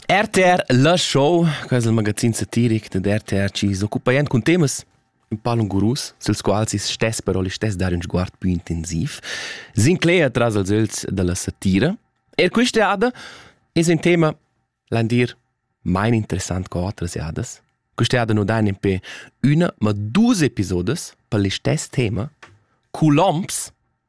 RTR La Show, quais il magazin satiric da RTR ci s'occupaient cun temas in palun gurus, sils quals is stess però listess dar un sguard più intensiv, Sinclair tras als els dalla satira. Er questa jada es un tema landir mein interessant co otras jadas. Questa jada no dain pe una ma dus episodes per listess tema, Columns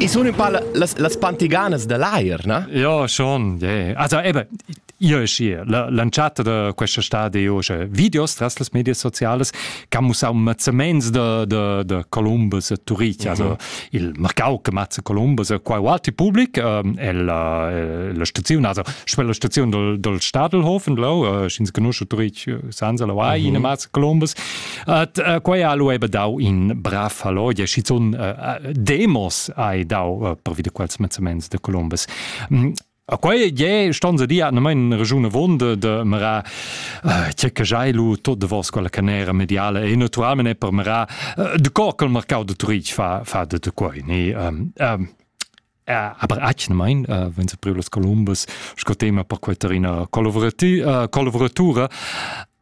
I sun ün pa las las pantiganas da l'ajer, na? Ja, schon, yeah. Also eben, io e schi, l'entschatta da questa stadi io c'è videos tras las media sociales che han mussau mazzaments da, da, da Columbus a Turich, also il marcau che mazza Columbus a quai alti public ähm, e la, la stazione, also quella stazione del, del Stadelhofen, là, äh, scins conosce Turich, äh, sanza la vai, in mazza Columbus, At uh, quai ha lu ebe dau in brav fallodia, schizun uh, demos hai dau uh, per vide quels mezzaments de Columbus. Mm, A quei je ston se di an mein regiune vonde de mera che che jai lu tot de vos quella canera mediale e naturalmente per mera de corkel marcau de Turich fa fa de de quei ni um, um, aber achne mein uh, wenn se privlos Columbus sco tema per quei terina collaboratura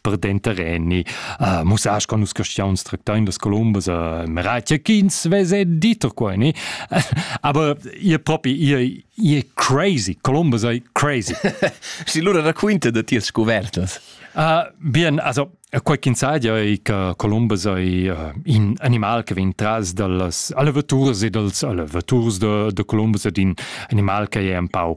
per denter enni uh, musas con nus castiaun stractain las colombas uh, meratia ch'ins vese diter queni aber ihr propi ihr ihr crazy colombas ei crazy si lura da quinte de tias scuvertas Uh, bien, also quei ch'ins sa ei che Columbus ei uh, in animal che vegn tras dallas allevaturs e dals allevaturs de, de Columbus ed in animal che è un pau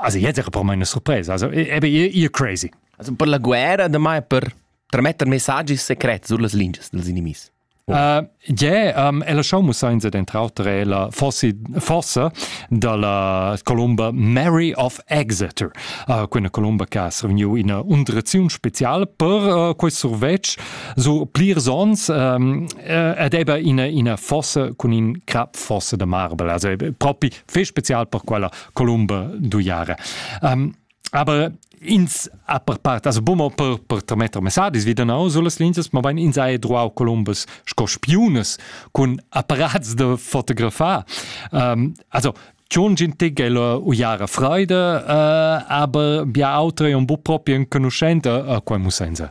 Also jetzt era per me una surpresa, also eben ihr crazy. Also per la guerra damai per trametter messaggi secrets sur las lingias dels inimis. Uh, yeah, um, è la show musainza dentro autre è la fossi, fossa dalla columba Mary of Exeter, uh, quella columba che ha survegniu una undrezione speciale per uh, questo survetsch su plirs ons um, ed ebbe una, una fossa con un crap fossa da marble, also propri fè spezial per quella Columba d'Uiare. Um, aber ins a per part also bumo per per trametter messadis wie dann aus las linzas ma bein ins hai droau columbus sco spiunas cun apparats da fotografar um, also John Gintig è la uiara freida, uh, aber bia autra è un bu propi enconuschenta a uh, quai musenza.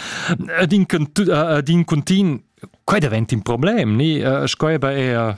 ed in cuntin quai davent in problem ni sco eba er